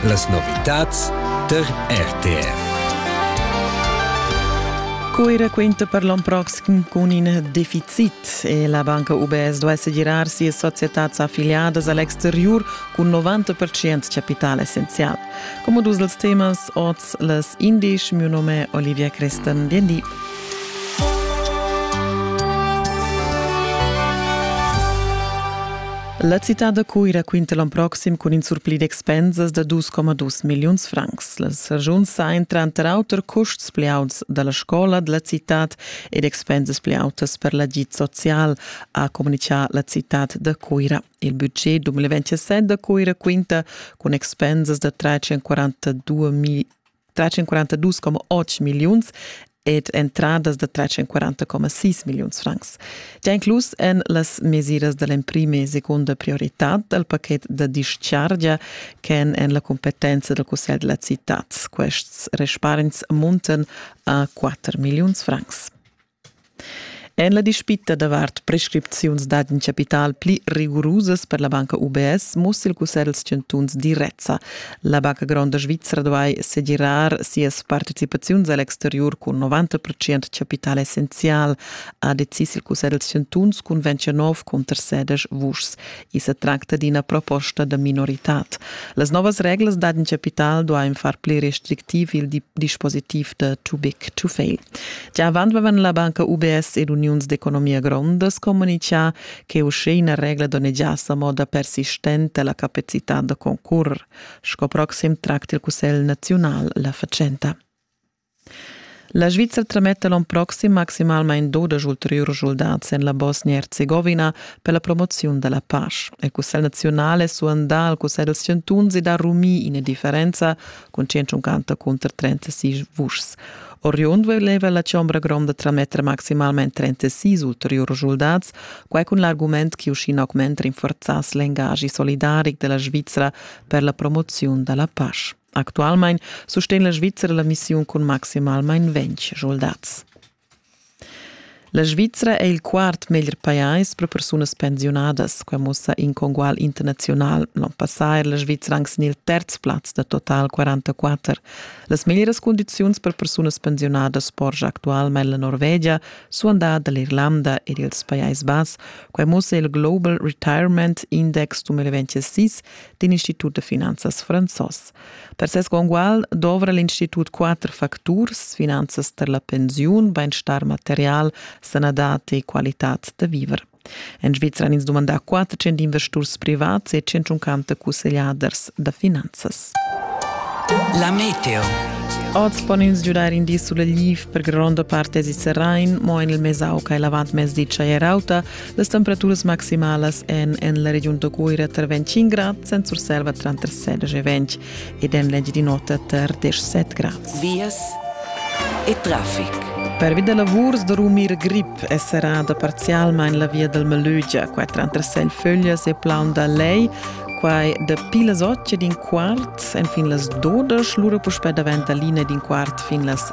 Las novitads tar RTR. Cuira quinta per l'on proxim cun in deficit e la banca UBS duesse girar sia societats affiliadas al exterior cun 90% capital essenzial. Come dus dels temas oz les indisch, mio nome Olivia Crestan, bien di. La citad da Cuira quinta l'on proxim cun in surpli d'expensas da 2,2 milliuns francs. Las regiuns sain tranter auter custs pli auts da la scola da la citad ed expensas pli autas per l'agid social, ha communichà la citad da Cuira. Il budget 2027 da Cuira quinta cun expensas da 342 million 342,8 milliuns ed entradas da 340,6 milliuns francs. Già inclus èn las mesiras da l'emprima e seconda prioritad dal pachet da dischargia ch'èn en la competenza dal Cussegl della città. Quests respargns muntan a 4 milliuns francs. En la dispita davart prescripziuns d'agen chapital pli rigurusas per la banca UBS mussa il Cussegl dals chantuns direzza. La banca gronda svizra duai segirar sias participaziuns a l'exteriur cun 90 procent chapital essenzial, ha decis il Cussegl dals chantuns cun 29 cunter sedisch vuschs. I sa tracta d'ina proposta da minoritad. Las novas reglas d'adin capital duain far pli restrictiv il dispositiv da too big to fail. Gia avant avevan la banca UBS ed uniuns d'economia grondas communitgà che uschè ina regla donnegiass a moda persistenta la capacitad da concurrer. Sco proxim tracta il Cussegl naziunal la fatschenta. La Svizra trametta l'onn proxim maximalmain dodesch ulteriurs schuldats en la Bosnia-Herzegovina per la promoziun da la pasch. Il Cussegl naziunal è suandà al Cussegl dels chantuns ed ha rumì ina differenza cun 150 cunter 36 vuschs. Oriund voleva la chombra gronda trametter maximalmain 36 ulteriurs schuldats, quai cun l'argument che uschin augment rinforzass l'engagi solidaric della Svizra per la promoziun da la pasch. Actualmein sustegn la Svizra la missiun cun maximalmein ventg soldats. La Svizra è il quart meglier pajais per persunas pensiunadas, quai mussa in congual internazional. L'onn passà era la Svizra anc sin il terz plaz da total 44. Las meglieras condiziuns per persunas pensiunadas porscha actualmein la Norvegia, suandà dall'Irlanda ed ils Pajais Bass. Quai mussa il Global Retirement Index 2026 d'in institut de finanzas franzos. Per ses congual dovra l'institut quatter facturs, finanzas per la pensiun, beinstar material, sanadad e qualitad de viver. En Svizra han ins dumandà 400 investors privats e 150 cussegliaders da finanzas. La meteo. Oz pon ins giudar in di sulla Liv per gronda parte si Serain, mo en il Mesau che è lavat mezdi Chaiarauta Las temperaturas maximalas èn en la regiun da Cuira tar 25 grads, en Surselva tranter 16 e 20 ed en l'Engiadin'Ota tar 17 grads. Vias e traffic. Pervi da lavurs da rumir grip è serrada parzialmain la via dal Melögia, qua tranter Selfölias e Plaun da Lei. Quai dapi las 8 ed in quart, enfin las 12, lura puspè davent da l'ina ed in quart fin las